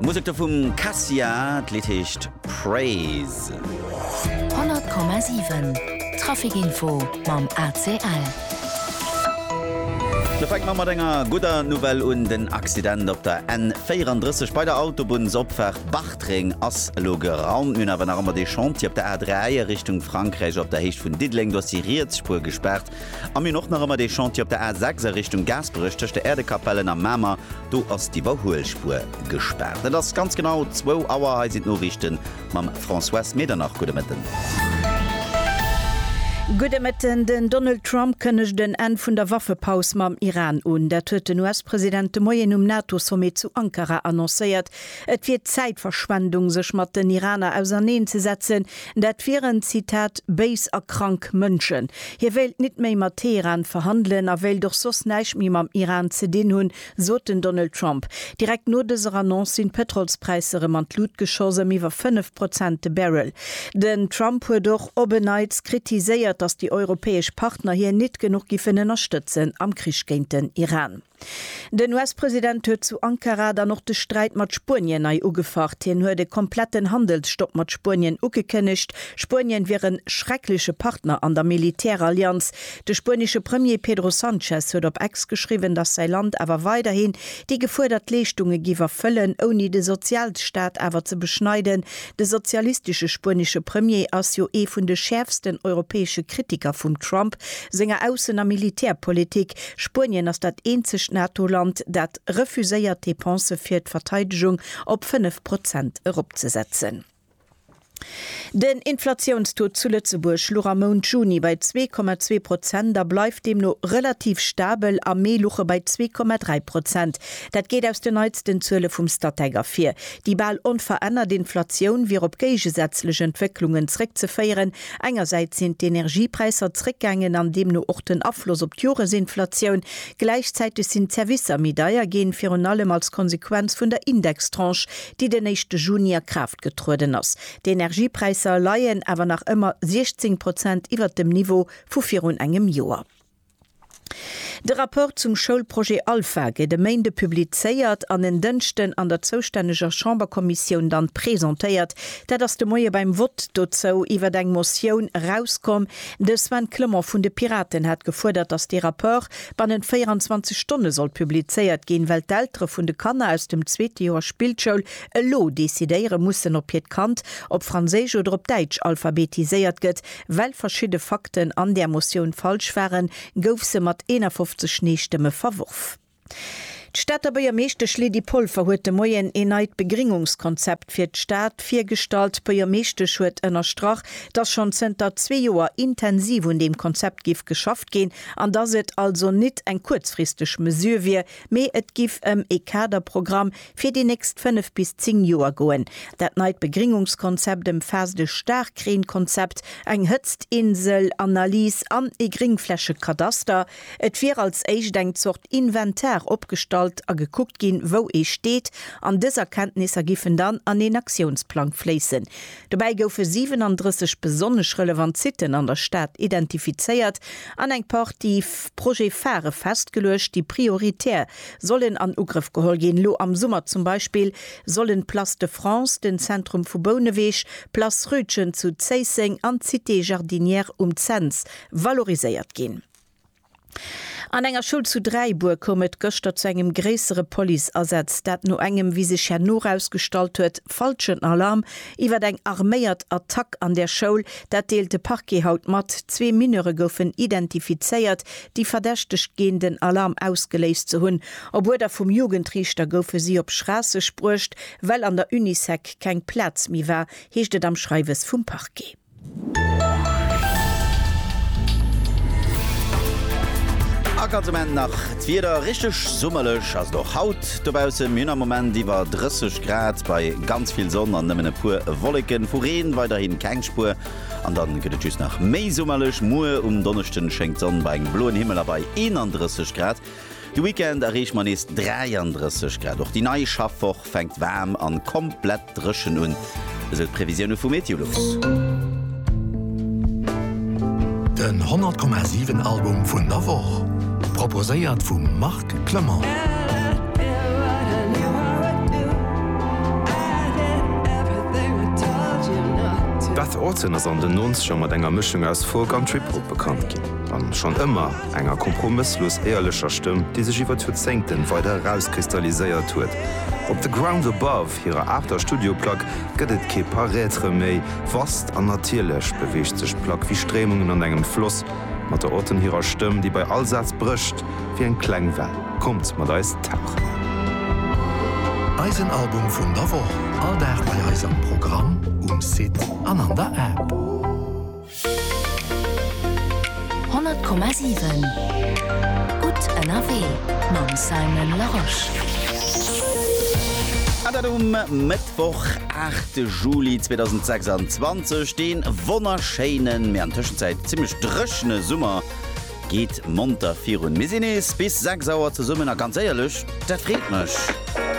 D'Musek do vum Cassia, d'Lidd heescht Praise. 100,7 Trafic Info mam ACL. Da fänke mer mat enger gudder Nouvelle un, Den Accident op der N 34 bei der Autobunnsopfaart Bartreng ass elo geraumt. Mir hunn awer nach ëmmer dee Chantier op der A 3 a Richtung Frankräich op der Héicht vun Diddeleng, do ass déi riets Spuer gespaart. An mir hunn och nach ëmmer dee Chantier op der A 6 a Richtung Gaasperech tëscht der Äerdekapellen a Mamer. Do ass d'Iwwerhuelspuer gespaart. Et ass ganz genau zwou Auer. Hei sinn d'Noriichte mam Françoise Medernach. Gudde Mëtten. Gudde Mëtten. Den Donald Trump kënnegt en Enn vun der Waffepaus mam Iran un. Dat huet den US-President de Moien um NATO-Sommet zu Ankara annoncéiert. Et wier Zäitverschwendung, sech mat den Iraner auserneen ze setzen. Dat wieren, Zitat, béis a krank Mënschen. Hie wéilt nit méi mat Teheran verhandelen a wéilt och soss näischt méi mam Iran ze dinn hunn, sot den Donald Trump. Direkt no dëser Annonce sinn d'Pëtrolspräisser rëm an d'Lut geschoss, ëm iwwer 5 Prozent de Barrel. Den Trump huet och op en Neits kritiséiert, datt déi europäesch Partner hien nit genuch giffen ënnerstëtzen am Krich géint den Iran. Den US-President huet zu Ankara dann och de Sträit mat Spuenien nei ugefacht. Hien huet e kompletten Handelsstopp mat Spuenien ugekënnegt. Spuenien wier e schreckleche Partner an der Militärallianz. De spuenesche Premier Pedro Sanchez huet op Ex geschriwwen, datt säi Land awer weiderhin déi gefuerdert Leeschtunge giff erfëllen, ouni de Sozialstaat awer ze beschneiden, De sozialistesche spuenesche Premier ass jo ee vun de schäerfsten europäesche Kritiker vum Trump senger Aussen a Militärpolitik. Spuenien ass dat eenzegt NATO-Land, dat refuséiert d'Depensë fir d'Verteidegung op 5 Prozent eropzesetzen. Den Inflatiounstaux zu Lëtzebuerg luch am Mount Juni bei zwee Komma zwee Prozent a bleift deemno relativ stabel. Am Mee luch e bei zwee Komma dräi Prozent. Dat geet aus den neitsten Zuele vum Statec ervir. Déi bal onverännert Inflatioun wier op géigesätzlech Entwécklungen zréckzeféieren, engersäits sinn d'Energiepräisser zréckgaangen an deemno och den Afloss op d'Joresinflatioun, gläichzäiteg sinn d'Servicer méi deier ginn, virun allem als Konsequenz vun der Indextranche, déi den éischte Juni a Kraaft getrueden ass. D'Energiepräisser leien awer nach ëmmer 16 Prozent iwwert dem Niveau vu virun engem Joer. De Rapport zum Schoulprojet Alpha gétt e Méinde publizéiert an en Dënschden an der zoustänneger Chamberkommissioun dann presentéiert. Dat ass de Moie beim Vott dozou iwwert eng Motioun erauskomm. De Sven Clement vun de Piraten hat gefuerdert, datt dee Rapport bannent 24 Stonne sollt publizéiert ginn, well d'Eltere vun de Kanner aus dem zweete Joer Spillschoul elo decidéiere mussen, ob hiert Kand op Franséisch oder op Däitsch alphabetiséiert gëtt. Well verschidde Fakten an där Motioun falsch waren, gouf se mat 51 Nee-Stëmme verworf. D'Stater Buergermeeschtesch Lydie Polfer huet de Moien een neit Begringungskonzept fir d'Stad virgestallt. D'Buergermeeschtesch huet ënnerstrach, dass schonn zënter zwee Joer intensiv un deem Konzept giff geschafft ginn an dass et also nit eng kuerzfristeg Mesure wier, mee et giff ëm ee Kaderprogramm, fir déi nächst 5 bis 10 Joer goen. Dat neit Begringungskonzept ëmfaasst e Staarkreenkonzept, eng Hëtztinsel, Analys an e Gringflächekadaster. Et wier als éischt eng Zort Inventar opgestallt a gekuckt ginn, wou ee steet, an dës Erkenntnisser giffen dann an een Aktiounsplang fléissen. Dobäi goufe 37 besonnesch relevant Siten an der Stad identifizéiert an eng Partie Projet-Phare festgeluecht, déi prioritär Sollen an Ugrëff geholl ginn. Lo am Summer zum Beispill sollen d'Place de France, den Zentrum vu Bouneweg, d'Place Rütgen zu Zéisseng an d'Cité Jardinière um Cents valoriséiert ginn. An enger Schoul zu Dräibuer koum et gëschter zu engem gréissere Policeasaz. Dat no engem, wéi sech herno erausgestallt huet, falschen Alarm iwwer eng arméiert Attack an där Schoul. Dat deelt de Parquet haut mat. Zwee Mineure goufen identifizéiert, déi verdächtegt ginn den Alarm ausgeléist ze hunn. Op Uerder vum Jugendriichter goufe si op Schraasseg bruecht, well an der Unisec keng Plaz méi war, heescht et am Schreiwes vum Parquet. A ganz um Enn nach d'Wieder, richteg summerlech ass et och haut dobaussen. Mir hunn am Moment iwwer 30 Grad bei ganz vill Sonn an nëmmen e puer Wolleken. Vu Reen weiderhi keng Spuer. An dann gëtt et just nach méi summerlech. Muer um Donneschden schéngt d'Sonn bei engem bloen Himmel a bei 31 Grad. De Weekend erreeche mer nees 33 Grad. Och déi nei Schaffwoch fänkt waarm an komplett dréchen un, esou d'Previsioune vu Meteolux. Den 100,7 Album vun der Woch proposéiert vum Marc Clement. Beth Orton ass an den Nonzeger mat enger Mëschung aus Folk an Trip-Hop bekannt ginn, a schonn ëmmer enger kompromësslos éierlecher Stëmm, déi sech iwwer d'Joerzéngten weider erauskristalliséiert huet. Op The Ground Above, hirer aachter Studioplack, gëtt et kee Paraître méi vast, an natierlech beweegt sech d'Plack wéi Stréimungen an engem Floss, mat der Orton hirer Stëmm, déi bei all Saz brécht. wéi eng kleng Well. Kommt mat eis tauchen! Eisen Album vun der Woch, all Dag bei eis am Programm, um Site an an der App. 100,7 Gutt ënnerwee mam Simon Larosche. An dat um Mëttwoch, 8 Juli 2026. Dee wonnerschéinen, mee an Tëschenzäit zimmlech dréchene Summer Geet monter virun. Mir sinn nees bis 6 Auer zesummen a ganz éierlech, dat freet mech.